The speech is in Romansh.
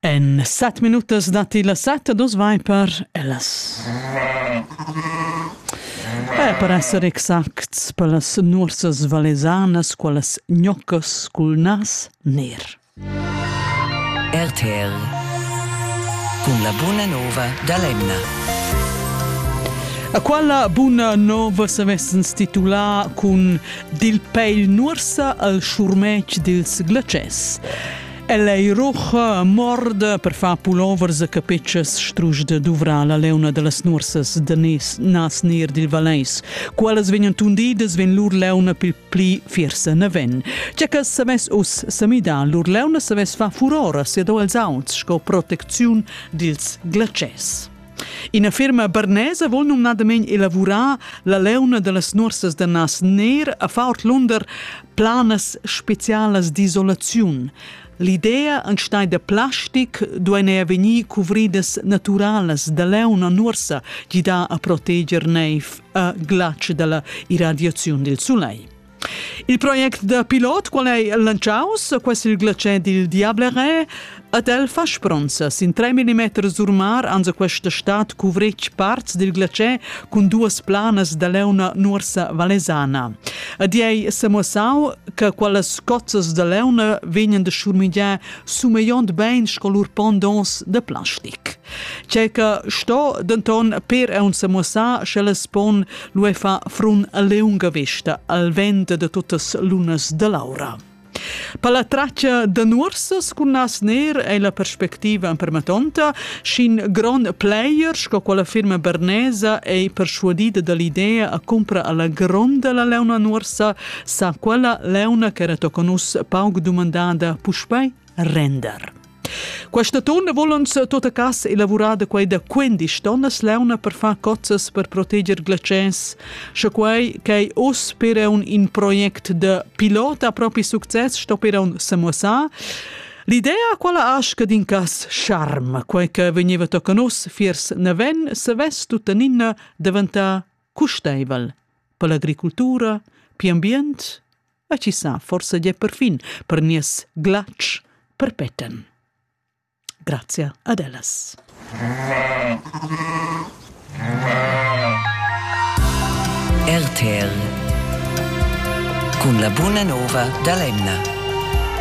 En set minutas datti la set e dus vai per ellas. E per essere exacts per las nuorsas valesanas, qualas gnoccas cul nas ner. RTL con la buona nova da Lemna. A quella buna nova s'avessens titulà cun Dil pegl nuorsa al schurmetg dils glacès. El ei rucha morda per far pulovers e capetschas strusch da duvrar la leuna dallas nursas da nes, nas ner dil Valeis. Qualas vegnan tundidas vegn lur leuna pil pli fiersa naven. Tge che savess us samidar lur leuna savess fa furora sia do els auts sco protecziun dils glacès. Ina firma bernesa vul numnadament elavurar la leuna da las nuorsas da nas ner a far lunder planas specialas d'isolaziun. L'idea an stai da plastic duein er vegnir cuvridas naturalas da leuna nuorsa, gida a proteger neiv a glatsch dalla irradiaziun del sulei. Il project da pilot qual ei lantschaus, quasi il glacier dil Diablere, ad el fa spronza. Sin 3 mm sur mar anza questa stat cuvretg parts dil glacier cun duas planas da leuna nuorsa valesana. Ad ei semuossau che quelles cozzas da leuna vegnan da schurmigiar sumeiond bein sco lur pondons de plastic. Tschecca sto denton per aunc semuossar sch'ellas pon lu fa frun a leunga vesta al vent de tuttas lunas de l'aura. Per la traccia de nuorsas cun nas ner ei la perspectiva empermatonta, sc'in gron player sco quella firma bernesa ei persuadida dall'idea a compra alla gronda la leuna nuorsa, sa quella leuna che era tocanus pauc dumandada puspei render. Questa tonna volans tota casa elavorada quai da 15 tonnas leuna per far cozzas per proteger glaciers. Sche quai che oss per un in project de pilota propri success sto per un samosa, L'idea quella asca din cas charm, quai che veniva tocanus fiers naven, se ves tuttaninna daventà custaivel per l'agricoltura, per ambient e chi sa, forsa gia perfin per nies glatsch perpetten. Grazia ad ellas. RTL cun la buna nova da l'Emna.